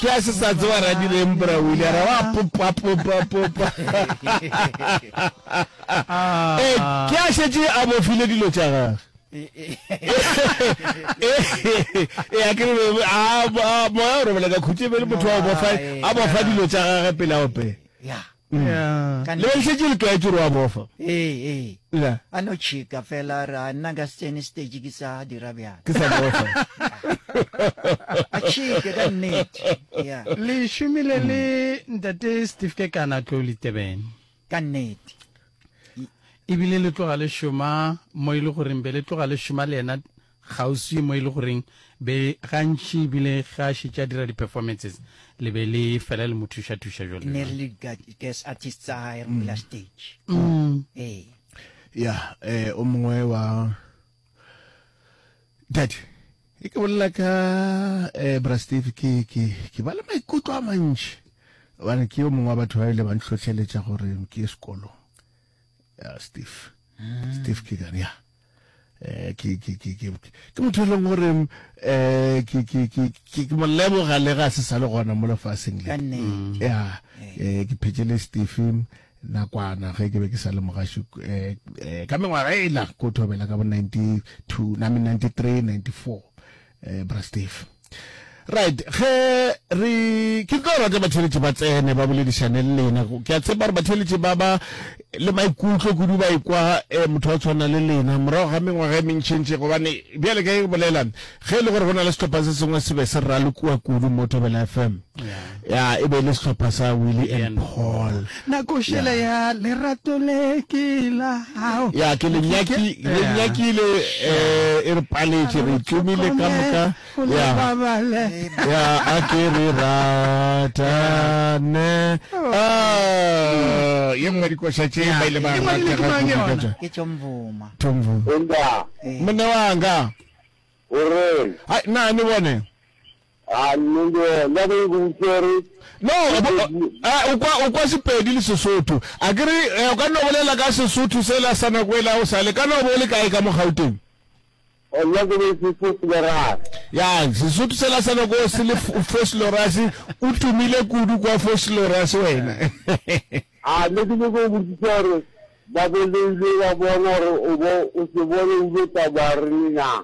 Ke a se sa tseba Radireng bra o ile a re wa popa popa popa. Eh ke a šetše a bofile dilo tša gage. E a ke re a moya o robela ka khutše be le motho wa bofa a bofa dilo tša gage pele a opela. le be šetše le tlwaetše gore wa bofa ee ee a no tšhika fela ra nna ka setsene stage ke sa dira bjalo ke sa bofa a tšhike ka nnete ya le šomile le ntate steve ke kana tlo le tebeng ka nnete ebile le tloga le šoma mo e le goreng be le tloga le šoma le yena kgauswi mo e le goreng be gantši ebile ge a šetše a dira di-performances le be le fela le mo thuša-thuša jalo ne re le di-guest artists tsa gae re mo bela stage ee ya eh o mongwe wa dadi e ke bolela ka eh bra steve ke ke ke ba le maikutlo a mantši gobane ke yo mongwe wa batho ba ile ba ntlhotlheletša gore ke ye sekolong ya steve steve ke gane ya eh, ke ke ke ke ke motho e leng gore um ke ke ke ke ke mo leboga le ga se sa le gona mo lefaseng le mm. ya eh, ke phetse le stephen nakwana ge ke be ke sa le mogaši um eh, eh, ka mengwaga e la ko thobela ka bo ninety two name ninety three ninety four um bra stephen right ge re ke tlo rata batheletši ba tsene ba boledišane le lena ke a tshepa gore batheletši ba ba le maikutlo kudu ba ikwa eh, motho wa tshwana le lena morago ga mengwaga e mentšhentši gobane bjale ka e bolela ge e le gore go na le setlhopha se sengwe se be se ralokiwa kudu mo tobela fm ya e be le sehlopha sa Willie and Paul na košela ya lerato le ke la hao ya ke le nyaki le nyakile eh e re paletše re tumile ka moka ya ya a ke re rata ne oh. ah ye nngwe dikoša tše ba ile ba rata ga ke ka tša ke tšomvuma tšomvuma mona wanga o re ha na ne bone No, o kwa, o kwa Sepedi le Sesotho. A ke re, eh, o ka no bolela ka Sesotho sela sa nako ela o sale. Ka no bo le kae ka mo Gauteng? Oh, nna ke be ke se Florase. Ya, Sesotho sela sa nako se le Foslorase, o tumile kudu kwa Foslorase wena. A ne ke nyoko botsisa gore ba boleile ba bona gore o bo o se bone o lo tsamaya re le na.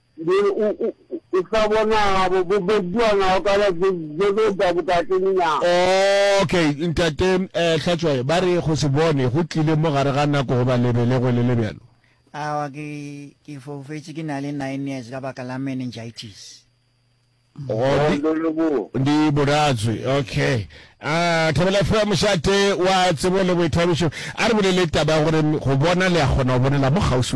Be o, o, o sa bona gabo, bo bediwa nago ka ba, be, be be da bokateng na? Okay, Ntate, eh, Hlatšwae, ba re go se bone go tlile mo gare ga nako goba lebelegwe le le bjalo. Aowa, ke, ke foufetše ke na le nine years ka baka la meningitis. Go, Oh, ndi, le, le bo. ndi boratswe, okay. Ah, Thabela Fre, mošate wa tsebo le boithabišo, a re bolele taba ya gore go bona le a kgona go bonela mo kgauswi.